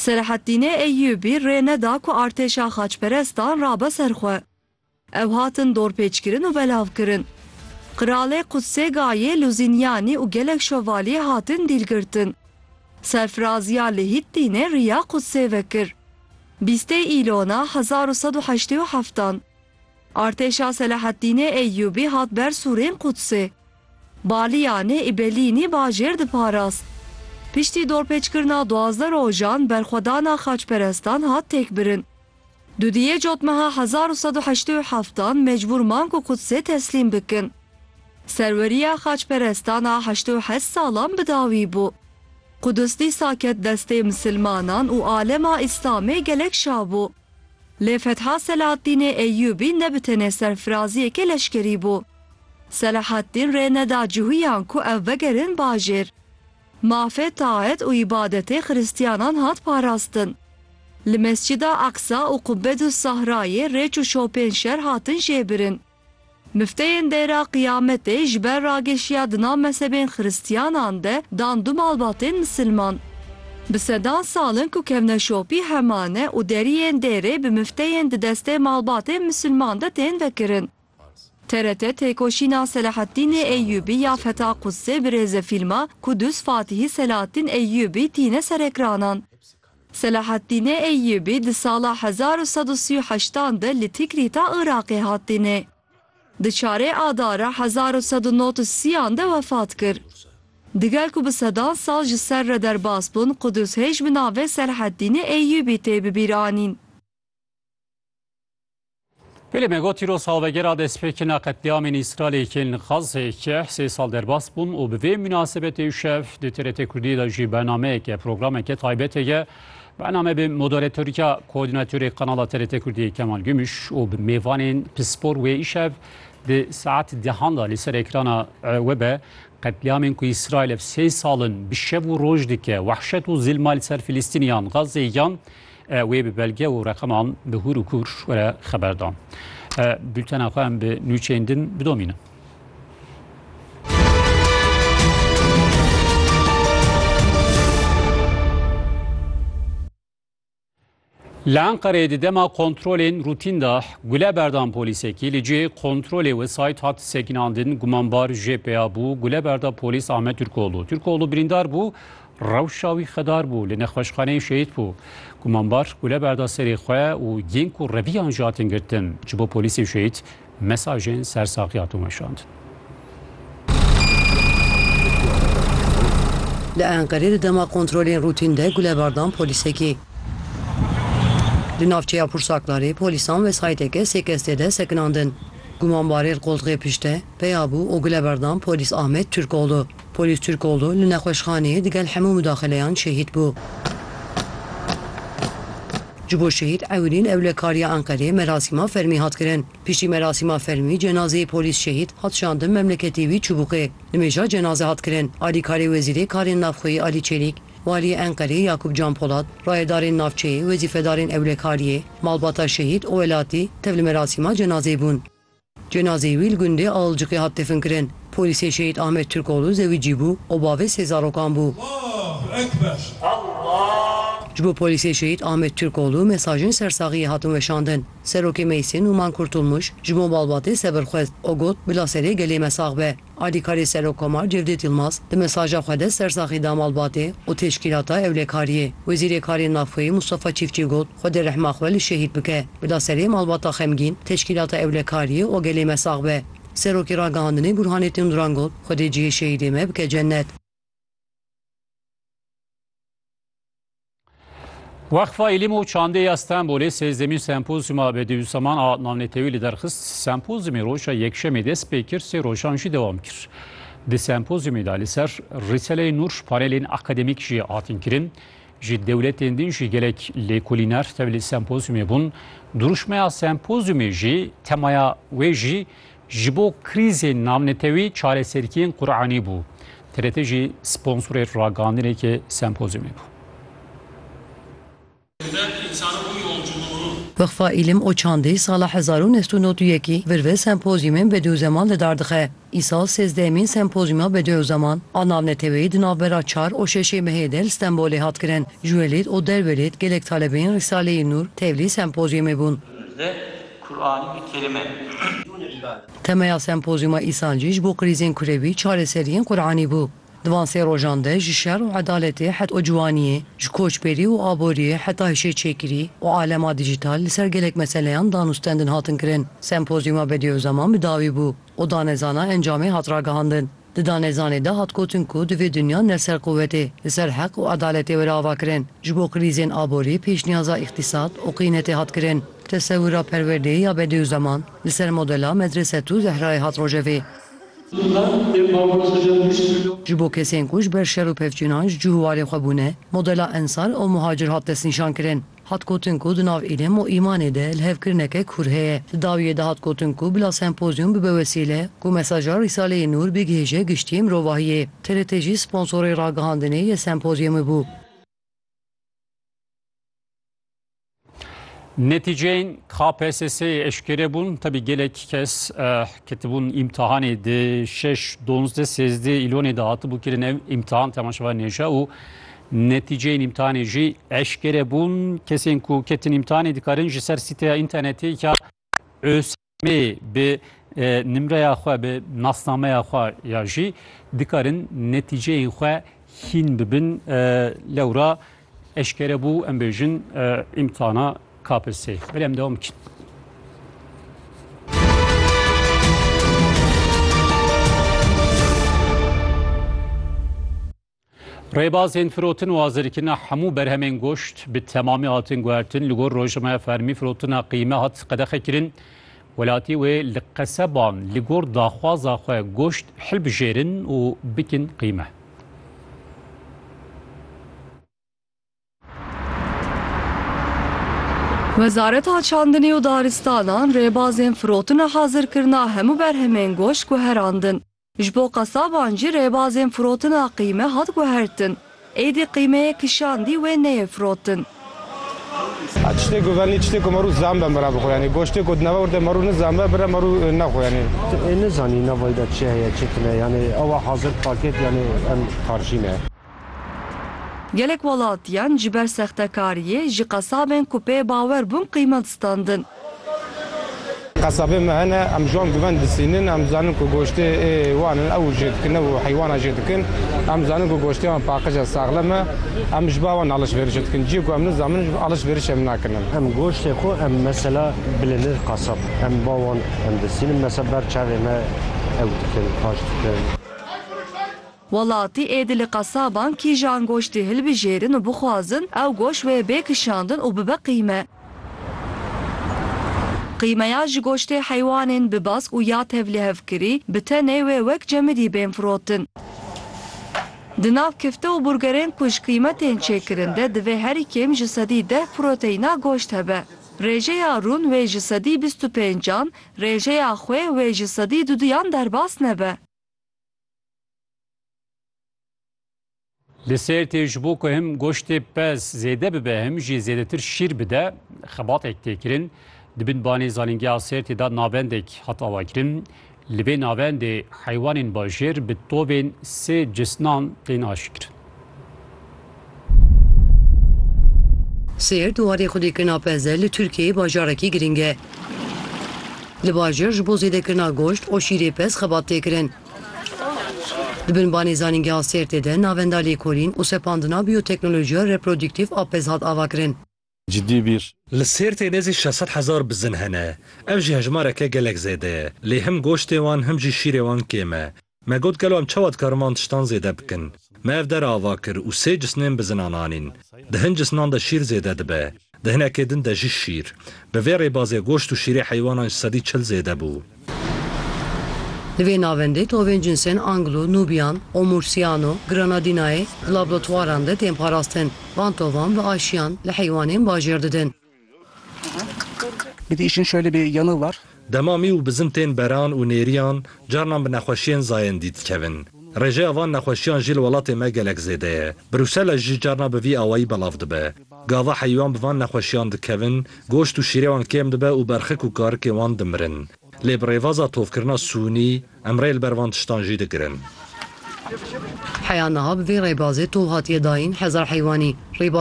Selahattînê Eyyûbî rê neda ku artêşa xaçperestan rabe ser xwe. Ew hatin dorpêçkirin û belavkirin. Qiralê Qudsê Gayê, Luzînyanî û gelek şovaliyê hatin dîlgirtin. Serfiraziya li Hittînê riya Qudsê vekir. Bîstê Îlona hezar û sed û heştê û heftan. Artêşa Selahattînê Eyyûbî hat ber sûrên Qudsê. Baliyanê Îbelînî bajêr diparast. Piştî dorpêçkirina duwazdeh rojan berxwedana xaçperestan hat têkbirin. Dudiyê cotmeha hezar û sed û heştê û heftan mecbûr man ku Qudsê teslîm bikin. Serweriya xaçperestan a heştê û heşt salan bi dawî bû. Quds dîsa ket destê misilmanan û alema Îslamê gelek şabû. Lê fetha Selahattînê Eyyûbî ne bi tenê serfiraziyekê leşkerî bû. Selahattîn rê neda cihûyan ku ew vegerin bajêr. Mafê taet û îbadetê xirîstiyanan hat parastin. Li Mescîda Aqsa û Qubbedûs Sahrayê rêç û şopên şer hatin jêbirin. Mifteyên Dêra Qiyametê ji ber rageşiya di nav mezhebên xiristyanan de dan du malbatên misilman. Bi sedan sal in ku kevneşopî hema ne û deriyên dêrê bi mifteyên di destê malbatên misilman de tên vekirin. TRT têkoşîna Selahattînê Eyyûbî ya Feta Qudsê bi rêzefîlma Kudüs Fatîhî Selahattîn Eyyûbî tîne serekranan. Selahattîne Eyyûbî di sala hezar û sed û sî û heşt an de li Tikrîta Iraqê hat tîne. Di çarê Adara hezar û sed û nod û sî an de wefat kir. Digel ku bi sedan sal ji ser re derbas bûn, Qudûs hêj bi navê Selahattîne Eyyûbî tê bi bîr anîn. Belê me got îro salvegera destpêkirina qetlîamên Îsraîlê yên li Xazzê keh sê sal derbas bûn û bi vê munasebetê îşev di TRT Kurdî de jî bernameyeke programeke taybet heye. Bername bi moderatorîka koordînatorê qanala TRT Kurdî Kemal Gümüş û bi mêvanên pispor wê îşev di saet dehan de li ser ekrana we be qetlîamên ku Îsraîl ev sê sal in bi şev û roj dike wehşet û zilma li ser Filîstîniyan Xazzê yan Wê bi belge û reqeman bi hûr û kûr were xeber da. Bultena xwe em bi nûçeyên din bidomînin. Li Enqereyê di dema kontrolên rûtîn de gule berdan polîsekî li cihê kontrolê wesayît hat sekinandin gumanbar jê peya bû gule berda polîs Ahmet Türkoğlu. Türkoğlu birîndar bû Rewşa wî xedar bû, li nexweşxaneyê şehîd bû. Gumanbar gule berda serê xwe û yên ku reviyan ji hatin girtin ji bo polîsê şehîd mesajên ser saxî hatin weşandin. Li Enqerê di dema kontrolên rûtîn de gule berdan polîsekî. Li navçeya Pursaklarê polîsan wesayîteke sê kes tê de sekinandin. Gumanbarê li qoltixê pişt e, peya bû û gule berdan polîs Ahmet Turkoğlu. Polîs Turkoglu li nexweşxaneyê digel hemû mudaxileyan şehîd bû. Ji bo şehîd Ewilîn Ewlekar ya Enqerê merasîma fermî hat kirin. Piştî merasîma fermî cenazeyê polîs şehîd hat şandin memleketê wî Çubûqê. Nimêja cenaze hat kirin alîkarê Wezîrê Karên Navxweyî Alî Çelîk, Waliyê Enqerê Yakup Can Polat, rayedarên navçeyê, wezîfedarên Ewlekariyê, malbata şehîd û welatî tev li merasîma cenazeyê bûn. Cenazeyê wî li gundê Alıcıkê hat definkirin. Polîsê Şehîd Ahmet Turkoğlu zewicî bû û bavê sê zarokan bû. Ji bo polîsê Şehîd Ahmet Turkoğlu mesajên sersaxiyê hatin weşandin. Serokê Meysin Numan Kurtulmuş ji bo malbatê sebir xwest û got bila serê gelê me sax be. Alîkarê Serokkomar Cevdêt Yilmaz di mesaja xwe de ser saxî da malbatê û teşkîlata ewlekariyê. Wezîrê Karên Navxweyî Mustafa Çîftçî got, Xwedê rehma xwe li şehîd bike. Bila serê malbata xemgîn, teşkîlata ewlekariyê û gelê me sax be. Serokê Ragihandinê Burhanettin Duran got, Xwedê cihê şehîdê me bike cennet. Wexfa Îlim û Çandê ya Stenbolê sêzdemîn sempozyuma Bedîusaman a navnetewî li derxist. Sempozyumê roja Yekşemê dest pê kir sê rojan jî dewam kir. Di sempozyumê de li ser Rîseleyê Nûr panelên akademîk jî hatin kirin. Ji dewletên din jî gelek lêkolîner tevlî sempozyumê bûn. Duruşmeya sempozyumê jî temaya wê jî Ji bo krîzên navnetewî çareserkiyên Quranî bû. TRT jî sponsorê ragihandinekê sempozyumê bû. Wexfa Îlim û Çandî sala hezar û neh sed û nod û yekî vir ve sempozyumên bedewzeman li dar dixe. Îsal sêzdehemîn sempozyuma bedewzeman a navnetewî di navbera çar û şeşê mehê de li Stenbolê hat kirin. Ji welêt û derwelêt gelek talebeyên Rîsaleyê Nûr tevlî sempozyumê bûn. Kur'anî bi kelime ye. Temeya sempozyûma Îsancî ji bo krîzên kurewî çareseriyên Kur'anî bû. Di van sê rojan de ji şer û edaletê het û ciwaniyê, ji koçberî û aboriyê heta hişêçêkirî û alema dîjîtal li ser gelek meseleyan dan û stendin hatin kirin. Sempozyûma Bediûzzaman bi dawî bû û danezana encamê hat ragihandin. Di danezanê de hat gotin ku divê dinya ne ser quwetê, li ser heq û edaletê were avakirin. Ji bo krîzên aborî pêşniyaza îqtîsad û qîynetê hat kirin. Tesewira perwerdeyê ya Bediûzeman li ser modela Medresetû Zehrayê hat rojevê. Ji bo kesên ku ji ber şer û pevçûnan ji cû û warê xwe bûne, modela Ensar û Muhacir hat destnîşankirin. Hat gotin ku di nav îlm û îmanê de lihevkirineke kûr heye. Di dawiyê de hat gotin ku bila sempozyûm bibe wesîle ku mesaja Rîsaleyê Nûr bigihêje giştiyê mirovahiyê. TRT jî sponsorê ragihandinê yê sempozyûmê bû. Netîceyên KPSS'ê eşkere bûn. Tevî gelek kes ketibûn îmtihanê di şeş, donzdeh, sêzdeh îlonê de hatibû kirin. Ev îmtihan temaşevanên hêja û Netîceyên îmtihanê jî eşkere bûn. Kesên ku ketin îmtihanê dikarin ji ser sîteya înternetê ya ÖSYM'ê bi e, nimreya xwe bi nasnameya xwe ya jî dikarin netîceyên xwe hîn bibin. E, lewra eşkere bû em bêjin e, îmtihana KPSS. Belê em devam bikin. Rêbazên firotin û azirkirina hemû berhemên goşt bi temamî hatin guhertin. Li gor rojnameya fermî firotina qîme hat qedexekirin. Welatî wê li qeseban li gor daxwaza xwe goşt hilbijêrin û bikin qîme. Wezareta Çandinê û Daristanan rêbazên firotin û hazirkirina hemû berhemên goşt guherandin. Ji bo qesaban jî rêbazên firotina qîme hat guhertin. Êdî qîmeyê kişandî wê neyê firotin. A tiştê ku venî tiştê ku marû zanbe mira bixwe yanî goştê ku di nava werde marû nizanbe bira marû nexwe yanî. Ê nizanî navayî de çi heye çi tune yanî ew a hazir paket yanî em tarjîne. Gelek welatiyan ji ber sextekariyê ji qesabên ku pê bawer bûn qîmet standin. Qesabên me hene, em ji wan bi ven disînin, em dizanin ku goştê ê wan in, ew jê dikin, ew heywana jê dikin. Em dizanin ku goştê wan paqij e, saxlem e. Em ji ba wan alişverişê dikin. Ciyê ku em nizamin alişverişê em nakin em. Em goştê xwe em mesela bilê nir qesab, em ba wan em disînin mesela ber çavê me ew dikin, paş dikin. Welatî êdî li qesaban kîjan goştî hilbijêrin û bixwazin ew goşt wê bê kişandin û bibe qîme. Qîmeya ji goştê heywanên bi bask û ya tevlihevkirî bi tenê wê wek cemidî bên firotin. Di nav kifte û burgerên ku ji qîme tên çêkirin de divê herî kêm ji sedî deh proteyna goşt hebe. Rêjeya rûn wê ji sedî bîst û pêncan, rêjeya xwe wê ji sedî duduyan derbas nebe. Li Sêrtê ji bo ku him goştê pez zêde bibe him jî zêdetir şîr bide xebatek tê kirin. Di bin banê zanîngeha Sêrtê de navendek hat avakirin. Li vê navendê heywanên bajêr bi tovên sê cisnan tên aşkirin. Sêr di warê xwedîkirina peze li Tirkiyeyê bajarekî girîng e. Li bajir ji bo zêdekirina goşt û şîrê pez xebat tê kirin. Di binbanê zanîngeha Sêrtê de navenda lêkolîn û sepandina bîyoteknolojiya reprodîktîf a pez hat avakirin. cidî bîr. Li Sêrtê nêzî şeş sed hezar bizin hene. Ev jî hejmareke gelek zêde ye. Lê him goştê wan him jî şîrê wan kêm e. Me got gelo em çawa dikarin van tiştan zêde bikin. Me ev dere ava kir û sê cisnên bizinan anîn. Di hin cisnan de şîr zêde dibe. Di hinekê din de jî şîr. Bi vê rêbazê goşt û şîrê heywanan ji sedî çil zêde bû. Li vê navendê tovên cinsên Anglo, Nubian, Omursiano, Granadinae di lablotwaran de tên parastin. Van tovan bi aşiyan li heywanên bajêr didin. Dema mî û bizin tên beran û nêriyan, carinan bi nexweşiyên zayên dî dikevin. Rêjeya van nexweşiyan jî li welatê me gelek zêde ye. Brûsela jî carina bi vî awayî belav dibe. Gava heywan bi van nexweşiyan dikevin, goşt û şîrê wan kêm dibe û berxik û karikên wan dimirin. Lê bi rêvaza tovkirina sûnî, em rê li ber van tiştan jî digirin. Heya niha bi vê rêbazê tov hatiye dayîn hezar heywanî. Rêbaza